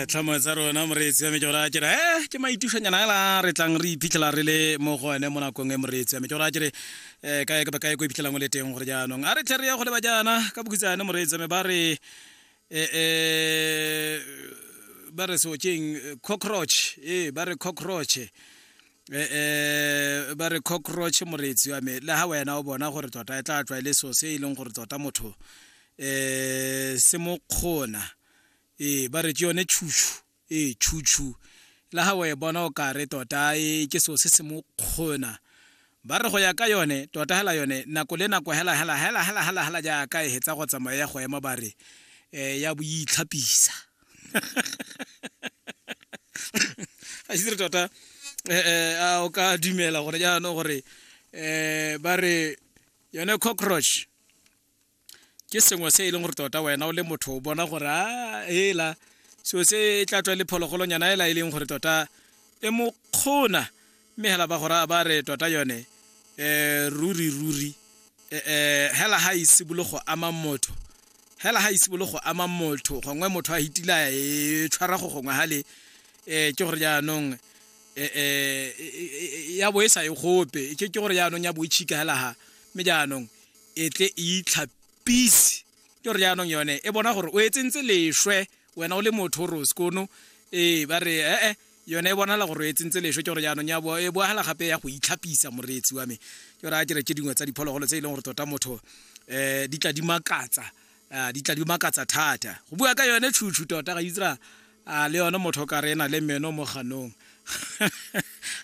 tlhamo tsa rona moreetsi ya me ke gore ke re e ke maitušanyana ela re tlang re iphitlhela re le mo go ene mo nakong e moreetsi ya me ke gore ke re um kae kapa kae ko iphitlhelang o le teng gore jaanong a re tlhe re ya go leba jaana ka bokutsane moreetsi ya me ba re um ba re seo keng cockroach ee ba re cockroach um ba re cockroach moreetsi wa me le ga wena o bona gore tota e tla tlwa e le so se e leng gore tota motho eh se mo kgona eh ba re ke yone chuchu eh chuchu la ha we bona o ka re tota e ke so se se mo kgona ba re go ya ka yone tota hela yone nako le nako hela hela hela hela hela hela ja ka e hetsa go tsamaya go ema ba re eh ya boitlhapisa a se tota eh, eh a o ka dumela gore jaanong gore eh ba re yone cockroach ke sengwe se e leng gore tota wena o le motho o bona gore a ah, hela so se e tla tswa le phologolonyana ela e leng gore tota e mo kgona mme hela ba gore ba re tota yone um ruri ruri um hela ga e simolo go ama motho hela ga e simolo go ama motho gongwe motho a hitila e tshwara go gongwe ga le um ke gore jaanong um ya bo e sa e gope ke gore jaanong ya bo e tšhika hela ga mme jaanong e tle e itlhapise ke gore jaanong yone e bona gore o e tsentse leswe wena o le motho o re o sekono ee ba re ee eh, eh, yone e bonala gore o e tsentse leswe ke gore jaanong e boagala gape ya go itlhapisa moreetsi wa me ke gore a kere ke dingwe tsa diphologolo tse e leng gore tota motho um di tla di makatsa a ah, di tla di makatsa thata go bua ka yone tšhutšhu tota ga itsra a ah, le yone motho ka rena le meno mo ganong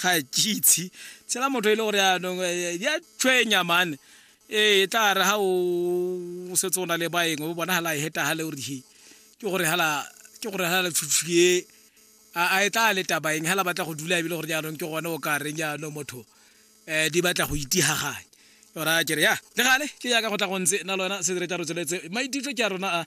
ga kitse tshela motho e le gore yaanong eh, ya tshwenya mane ee e tla re ga o setse o na le baeng o bona hala e heta hale gore he ke gore hala ke gore hala tšhutšhu e a e tla le tabaeng hala batla go dula ebile gore jaanong ke gone o ka reng jaanong motho eh di batla go itihaganya ora ke re ya le gale ke ya ka go tla go ntse na lona se re tla re tsweletse maititlo ke a rona a